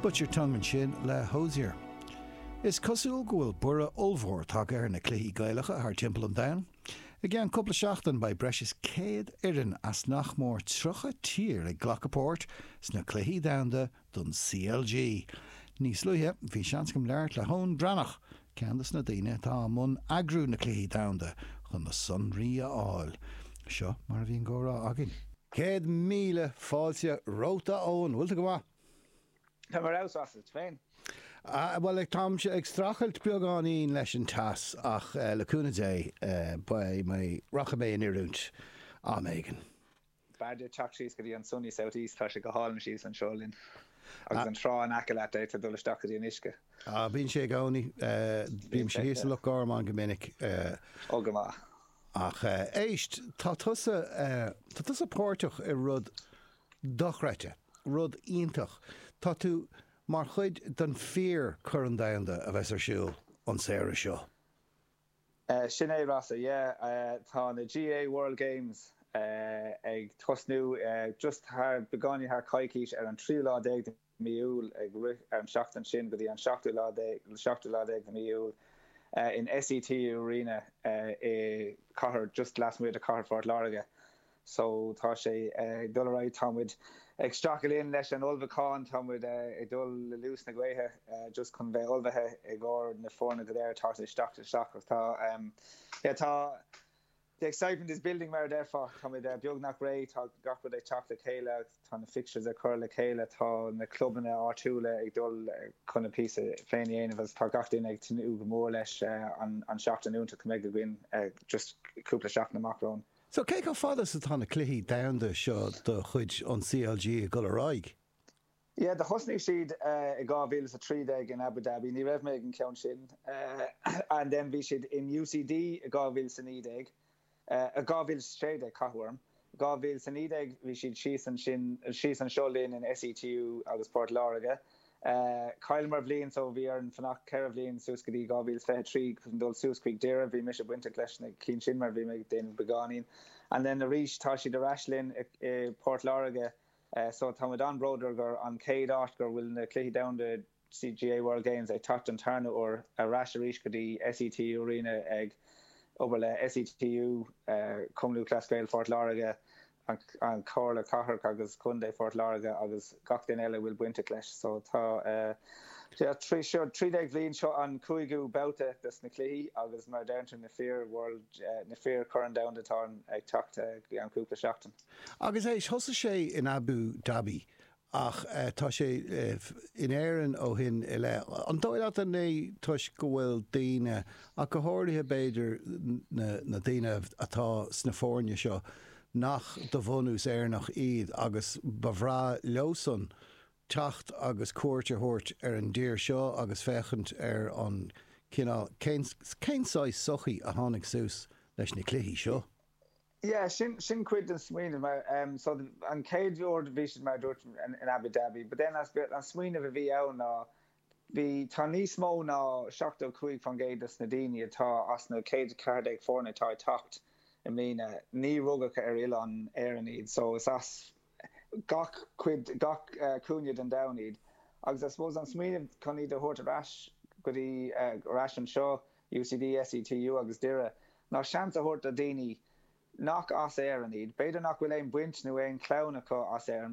Bite Your Tongue Ansin le Hozier. Is cosúil go bhfuil borradh ollmhór tagtha ar na cluichí Gaelacha thar timpeall an domhain. I gceann cúpla seachtain beidh breis is 100 foireann as nach mór 30 tír ag glacadh páirt sna Cluichí Domhanda don CLG. Níos luaithe bhí seans agam labhairt le hEoin Breathnach, Ceann de na daoine atá i mbun eagrú na Cluichí Domhanda chun na sonraí a fháil. Seo mar a bhí an comhrá againn. Céad míle fáilte romhat a Eoin, bhfuil tú go maith? Tá mé agus tú féin? Bhuel á táimse ag strachailt beagáinín leis an teas ach le cúnamh Dé beidh mé rachaidh mé in oiriúint am éigin. B'fhearr duit teacht síos go dtí an sunny south east, tá sé go hálainn síos anseo linn agus an trá in aice leat, d'fhéadfá dul isteach go dtí an uisce. Ah, bíonn sé i gcónaí, bímse thíos i Loch Garman go minic. Ó, go maith. Ach éist, tá tusa, tá tusa páirteach i rud dochreidte, rud iontach. Tá tú mar chuid den fíor Corn Domhanda a bheas ar siúl an samhradh seo. Sin é díreach yeah. Tá na GAA World Games ag tosnú just thar, beagáinín thar coicís, ar an tríú lá déag de mí Iúil, ag rith ar an seachtain sin go dtí an seachtú lá déag, seachtú lá déag de mí Iúil, in SETU Arena i gcathair, just lasmuigh de cathair Phort Láirge. so tá sé ag dul ar aghaidh tá muid ag strachailt linn leis an ullmhúchán tá muid ag dul le luas na gaoithe just chun bheith ullmhaithe i gcomhair na foirne go léir atá ag teacht isteach ach tá em yeah tá the excitement is building mar a déarfá tá muid beagnach réidh tá gach rud ag teacht le chéile tá na fixtures ag cur le chéile tá na clubanna áitiúla ag dul chun a píosa féin a dhéanamh agus tá gach duine ag tnúth go mór leis eh, an tseachtain iontach a bheidh againn eh, just cúpla seachtain amach romhainn. So, cé chomh fada is atá na cluichí domhanda seo de chuid an CLG ag dul ar aghaidh? Yeah, do thosnaigh siad i 2013 in Abu Dhabi, ní raibh mé ag an ceann sin, and then bhí siad in UCD i 2019, 2016 ceapaim, 2019 bhí siad síos ansin, síos anseo linn in SETU agus Port Láirge, Chailleamar bliain so bhí orainn fanacht ceithre bliain suas go dtí 2023 chun dul suas chuig Doire. Bhí mise bainteach leis na cinn sin mar bhí mé ag déanamh beagáinín. And then arís tá siad ar ais linn i bPort Láirge so tá muid an-bhródúil gur an chéad áit gur bhfuil na Cluichí Domhanda GAA World Games ag teacht don tarna uair ar ais arís go dtí SETU Arena ag obair le SETU Cumann Lúthchleas Gael Phort Láirge an Chomhairle Cathrach agus Contae Phort Láirge agus gach duine eile a bhfuil bainteach leis. So tá trí déag bhliain seo an cúigiú babhta de sna cluichí agus mar a deireann tú na fir World na fíor Corn Domhanda atá ag teacht i gceann cúpla seachtain. Agus éist thosaigh sé in Abu Dhabi ach tá sé in Éirinn ó shin i leith. An dóigh leat an é toisc go bhfuil daoine, ach go háirithe b'fhéidir na daoine atá sna foirne seo nach de bhunús Éireannach iad agus ba bhreá leosan teacht agus cuairt a thabhairt ar an dtír seo agus féachaint ar an cineál, cén saghas sochaí a tháinig suas leis na cluichí seo? Yeah, sin cuid den smaoineamh mar um, so an chéad uair bhí siad mar dúirt in Abu Dhabi, but then an smaoineamh a bhí ann ná bhí tá níos mó ná 75% dos na daoine atá as na 114 foirne atá ag teacht i mbliana níor rugadh ar oileán na hÉireann iad so is as gach cuid gach uh, cúinne den domhan iad agus I suppose an smaoineamh chun iad a thabhairt ar ais go dtí uh, ar ais anseo UCD, SETU agus Doire, ná seans a thabhairt do dhaoine nach as Éirinn iad. B'fhéidir nach bhfuil aon baint nó aon chlann acu as Éirinn,